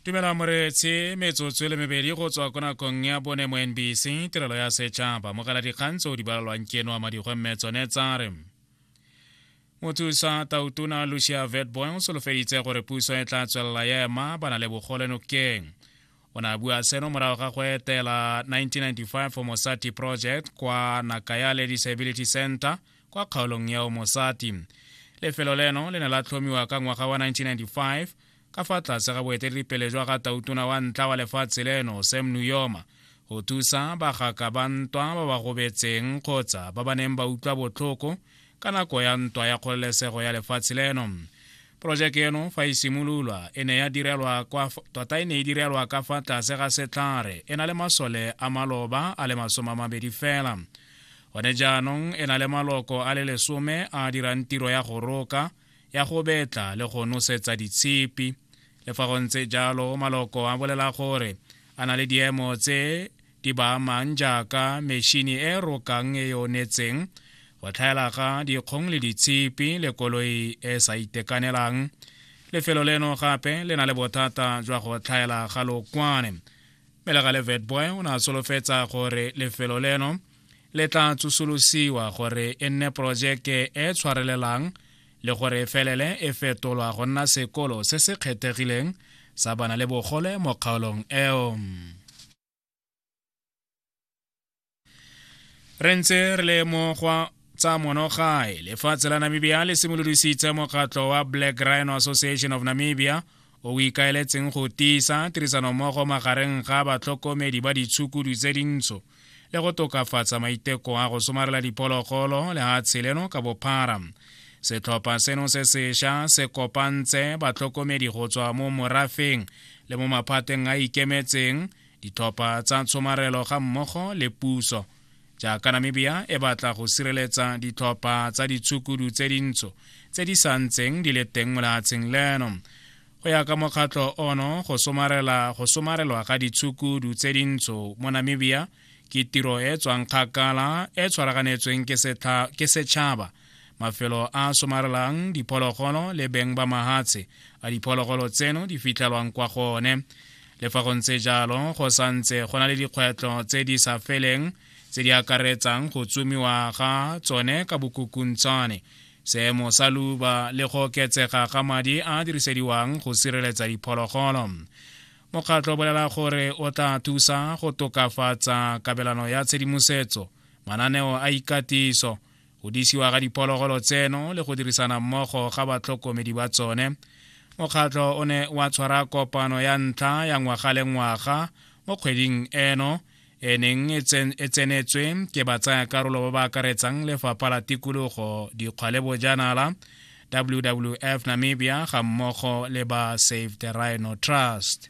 tumela moretsi metsotso e le mebedi go tswa ko nakong ya bone mo nbc tirelo ya setšhaba mogala dikgang tse o di balalwang keno a madigwe mme tsone tsa re mothusa tautona lucia vetboy o solofeditse gore puso e tla tswelela ya ema ba na le bogole nokeng o ne a bua seno morago ga go etela 1995 for mosati project kwa nakayale disability center kwa kgaolong ya omosati lefelo leno le ne la tlhomiwa ka ngwaga wa 1995 ka fa tlase ga boeteledipele jwa ga tautona wa ntla wa lefatshe leno sam nuyoma go thusa bagaka ba ntwa ba ba gobetseng kgotsa ba ba neng ba utlwa botlhoko ka nako ya ntwa ya kgololesego ya lefatshe leno porojeke eno fa e simololwa e ne ya direlwa kwa tota e ne e direlwa ka fa tlase ga setlhare e na le masole a maloba a le masome a mabedi fela gone jaanong e na le maloko a le lesome a dirang tiro ya go roka ya go betla le go nosetsa ditshipi le fa go ntse jalo maloko a bolela gore a na le diemo tse di ba amang jaaka mešhini e rokang e yonetseng go tlhaela ga dikgong le ditshipi le koloi e sa itekanelang lefelo leno gape le na le bothata jwa go tlhaela ga lokwane melega le vetboy o ne a solofetsa gore lefelo leno le tla tsosolosiwa gore e nne porojeke e tshwarelelang le gore e felele e fetolwa go nna sekolo se se kgethegileng sa bana le bogole mo kgaolong eo re ntse re le mo gwa tsa monogae lefatshe la namibia le simolodisitse mokgatlho wa black rhino association of namibia o o ikaeletseng go tiisa tirisanommogo magareng ga batlhokomedi ba ditshukudu tse dintsho le go tokafatsa maiteko a go somarela diphologolo le ga tsheleno ka bophara setlhopha seno se sesha se kopantse batlhokomedi go tswa mo morafeng le mo maphateng a ikemetseng ditlhopha tsa tshomarelo ga mmogo le puso jaaka namibia e batla go sireletsa ditlhopha tsa ditshukudu tse dintsho tse di sa ntseng di le teng mo lehatsheng leno go ya ka mokgatlho ono go somarelwa ga ditshukudu tse dintsho mo namibia ke tiro e tswang kgakala e tshwaraganetsweng ke setšhaba se mafelo a somarelang diphologolo le beng ba mahatshe a diphologolo tseno di fitlhelwang kwa go one le fa go ntse jalo go sa ntse go na le dikgwetlho tse di sa feleng tse di akaretsang go tsumiwa ga tsone ka bokukuntshane seemo sa luba le go oketsega ga madi a dirisediwang go sireletsa diphologolo mokgatlho o bolela gore o tla thusa go tokafatsa kabelano ya tshedimosetso mananeo a ikatiso go disiwa ga diphologolo tseno le go dirisana mmogo ga batlhokomedi ba tsone mokgatlho o ne wa tshwara kopano ya ntlha ya ngwaga le ngwaga mo kgweding eno e neng e, e tsenetswe ke batsayakarolo ba ba akaretsang lefapha la tikologo dikgwa le bojanala wwf namibia ga mmogo le ba save the rhino trust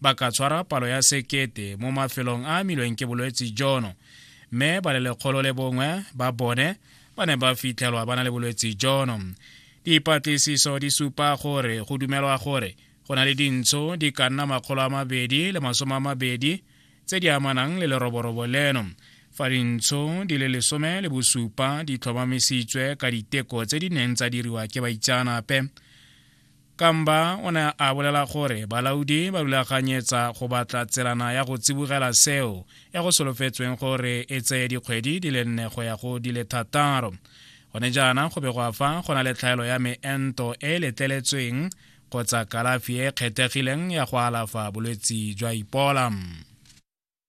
ba ka tshwara palo ya sekete mo mafelong a amilweng ke bolwetse jono mme ba le lekgolo le bongwe ba bone ba ne ba fitlhelwa ba na le bolwetse jono dipatlisiso di supa gore go dumelwa gore go na le dintsho di ka nna makgolo a mabedi le masome a mabedi tse di amanang le leroborobo leno fa dintsho di le lesome le bosupa di tlhomamisitswe ka diteko tse di neng tsa diriwa ke baitseanape Kamba o ne a bolela gore balaodi ba rulaganyetsa go batla tselana ya go tsibogela seo ya go solofetsweng gore e tseye dikgwedi di le nne go ya go di le thataro gone jaana go be go afa go na le tlhaelo ya meento e e letleletsweng kgotsa kalafi e e kgethegileng ya go alafa bolwetse jwa ipola